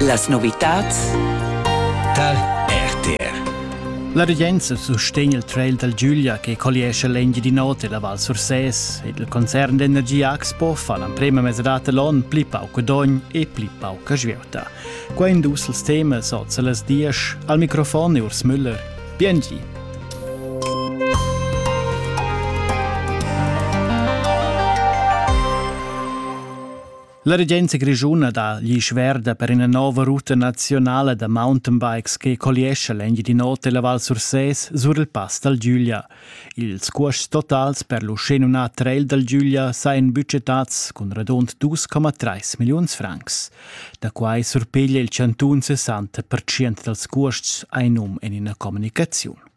Las novitads dal RTR La regenza sustegn il trail dal Giulia che colliescha l'Engiadin'Ota e la Val Sursès ed il concern d'energia Axpo fa l'emprema mesadata l'on pli pauc dogn e pli pauca svieuta. Quai in dus els temas oz a las diesch. Al microfon è Urs Müller. Biengi. La regenza grischuna dà gli schverda per ina nova ruta nazionala da mountainbikes che colliescha l'Engiadin'Ota e la Val Sursés sur il pass dal Giulia. Ils cuosts totals per l'Uschenunà Trail dal Giulia sajan budgetats cun radund 2,3 milliuns francs. Da quai surpiglia il chantun 60% dals cuosts, ein um en ina communicaziun.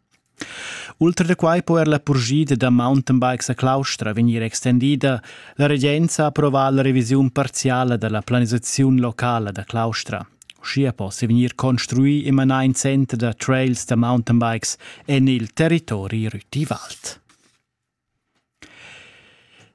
Ultra da quai po er la purschida da mountainbikes a Claustra vegnir extendida. La regenza ha approvà la revisiun parziala da la planisaziun locala da Claustra. Uschia possi vegnir construì e manà in center da trails da mountainbikes en il territori Rüti-Wald.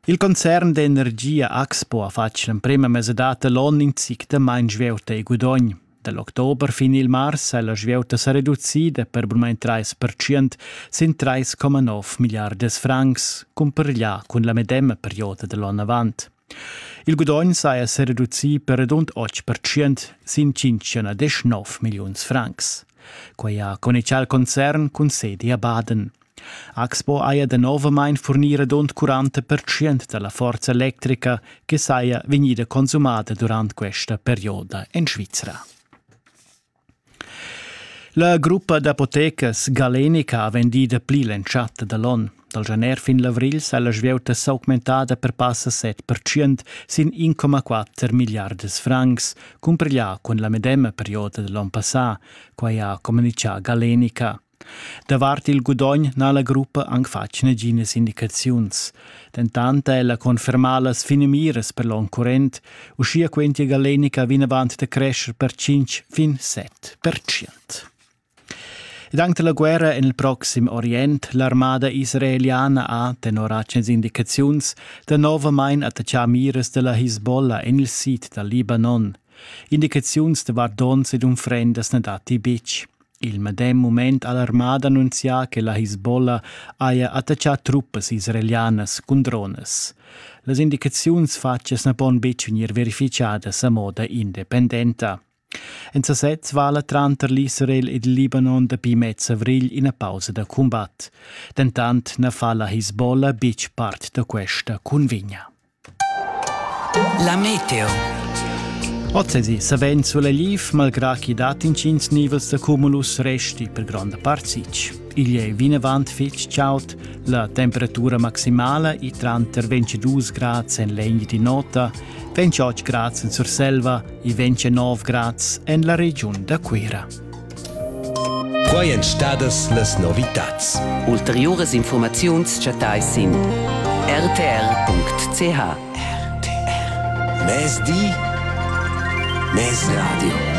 Il concern d'energia Axpo ha fatg l'emprema mesadad da l'onn in zic da main svieuta e gudogn. Da l'october fin il mars ha la svieuta sa reducida per bunmain trais pertschient sin 3,9 milliardas francs, cumpareglià cun la medema perioda da l'onn avant. Il gudogn saja sereducì per redund 8% sin 5,9 milliuns francs. Quai ha connectà il concern cun sedi a Baden. Axpo haja danovamain furnì redund 40% da la forza electrica che saja vegnida consumada durant questa perioda en Svizra. La gruppa d'apotecas Galenica ha vendì dapli l'entschatta da l'on. Dal gener fin l'avrigl s'ha la svieuta s'augmentada per passa 7% sin 1,4 milliardas francs, cumpareglià cun la medema perioda da l'on passà, quai ha communitgà Galenica. Davart il gudogn n'ha la gruppa anc fatg naginas indicaziuns. Dentant ha ella confermà las finamiras per l'onn current, uschia quentia Galenica vinavant da crescher per 5 fin 7 pertschient. Dank la guerra en il proxim Orient, l'armada israeliana ha, tenor atgnas indicaziuns, danovamain attaccà miras da la Hisbollah en il sid dal Libanon. Indicaziuns davart donns ed unfrendas na datti betg. Il medem mument ha l'armada annunzià che la Hisbollah haja attaccà truppas israelianas cun dronas. Las indicaziuns fatgas na pon betg vegnir verifitgadas a moda independenta. En sasez vala tranter l'Israel ed il Libanon dapi mez avrigl ina pausa da cumbat. Dentant na fa la Hisbollah betg part da questa cunvegna. La meteo. Ozzesi savend sulla liv, malgrà chi dat intgins nivels da cumulus resti per gronda part sitg. Igl è vinavant fitg chaud, la temperatura maximala è tranter 22 grads en l'egn di nota, 28 grads en Surselva e 29 grads en la regiun da Cuira. Quai èn stadas las novitads. Ulteriuras infurmaziuns chattais sin rtr.ch. RTR. Mezdi, mezradio.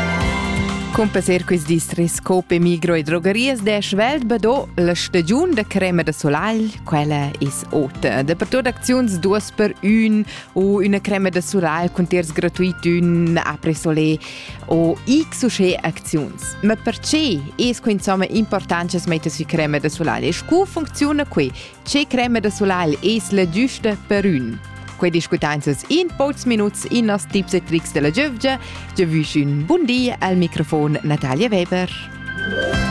Con passer quest distris Cope Migro e drogarias de Schwelt bado la stagiun da crema da solagl, quella is ota. Dappertut acziuns duas per un u una crema da solagl con tiers gratuit un après soleil. o x u sche acziuns. Ma perche es que insomma important che metta sü crema da solai e scu funcziuna que? Ce crema da solai es la giusta per ün? Que discutanzas in pocs minuts in nos tips e tricks della giövgia. Giavüsch ün bun di al microfon Natalia Weber.